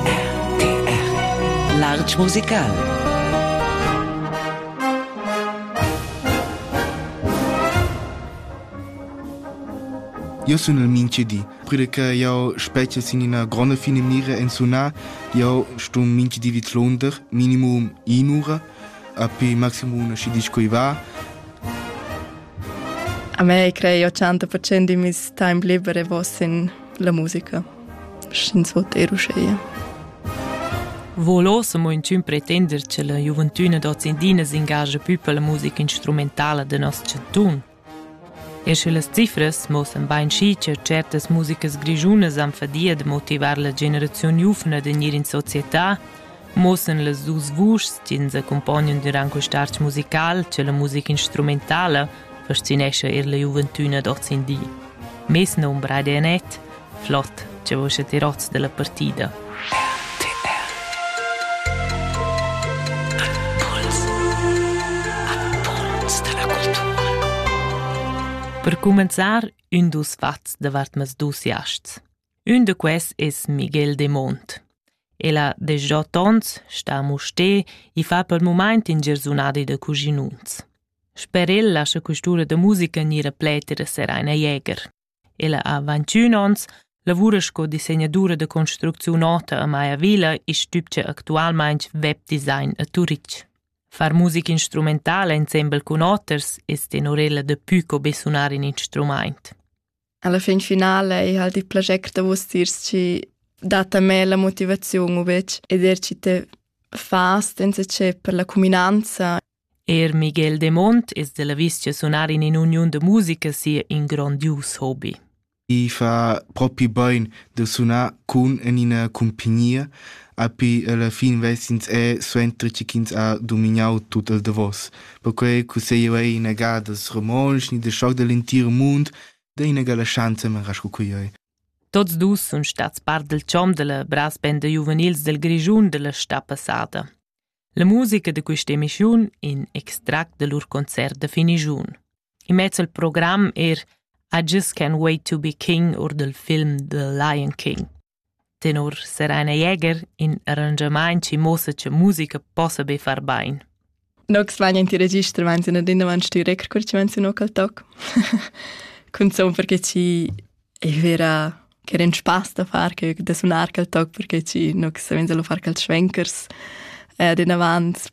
RTR Lartg musical Eu sun il minchi di, prüde che jau spetges in ina gronda finimira en sunar, jau stum minchi di vitlonder, minimum in'ura, api maximum una și disco va. A me crei 80% di mis time libere vos in la musica. Sch'ins vot er uscheia. Volo se mo inchün pretender che la giuventüna d'ozindina s'ingagia pü per la musica instrumentala de nos chantun. E sche las cifras mosan bain schi che certas musicas grischunas han fadia de motivar la generaziun giuvna de gnir in società, muossan las dus vuschs ch'ins accumpognan durant quest artg musical che la musica instrumentala fascinescha er la giuventüna d'ozindì. Mes nom Braide Anet, flott, che vos a tirozz della partida. Per cumenzar, ün dus fats davart mas dus jasts. Ün da quels es Miguel Demont. El ha desgià tons, sta a Mustér e fa pel mumaint in giarsunadi da cuschinuns. Sper el lascha quist'ura da musica gnir a pleter Seraina Jäger. Ella ha 21 ons, lavura sco disegnadura da construcziun ota a Maya Villa e stübgia actualmaing web design a Turitg. Far musica instrumentala insembel cun oters es tenorela da pü co be sunar in instrumaint. Alla fin finala ei halt il plager da vus tiers chi dat a me la motivaziun u vec ed er chi te fa senza che per la cuminanza Er Miguel de Mont es della vistgia sonar in in uniun de musica sia in grandius hobby. I fa propi bain de sunar cun en ina compagnia, api alla fin vesins è suenter che ins ha dominau tut il davos. Perquei che se io ei in agadas romontsch ni de schoc dell'entir mund, D'eina la schanza mera sco quei. Tots dus sun stats part del chom della brassbenda juvenils del Grischun della sta passada. La musica de questa emissiun in extract de lur concert de finigiun. I mezz al program er I Just Can't Wait to Be King or del film The Lion King. Tenor Serena Jäger in arranschamaint chi muossa cha musica possa be far bain. Nox vegnan ti register menziun ad indavan stu record cur chi menziunò quel toc. Cunzun perché chi ei vera che era un spaß da far che da sunar quel toc perché ci no savenza lo far quels schwenkers eh, ad inavant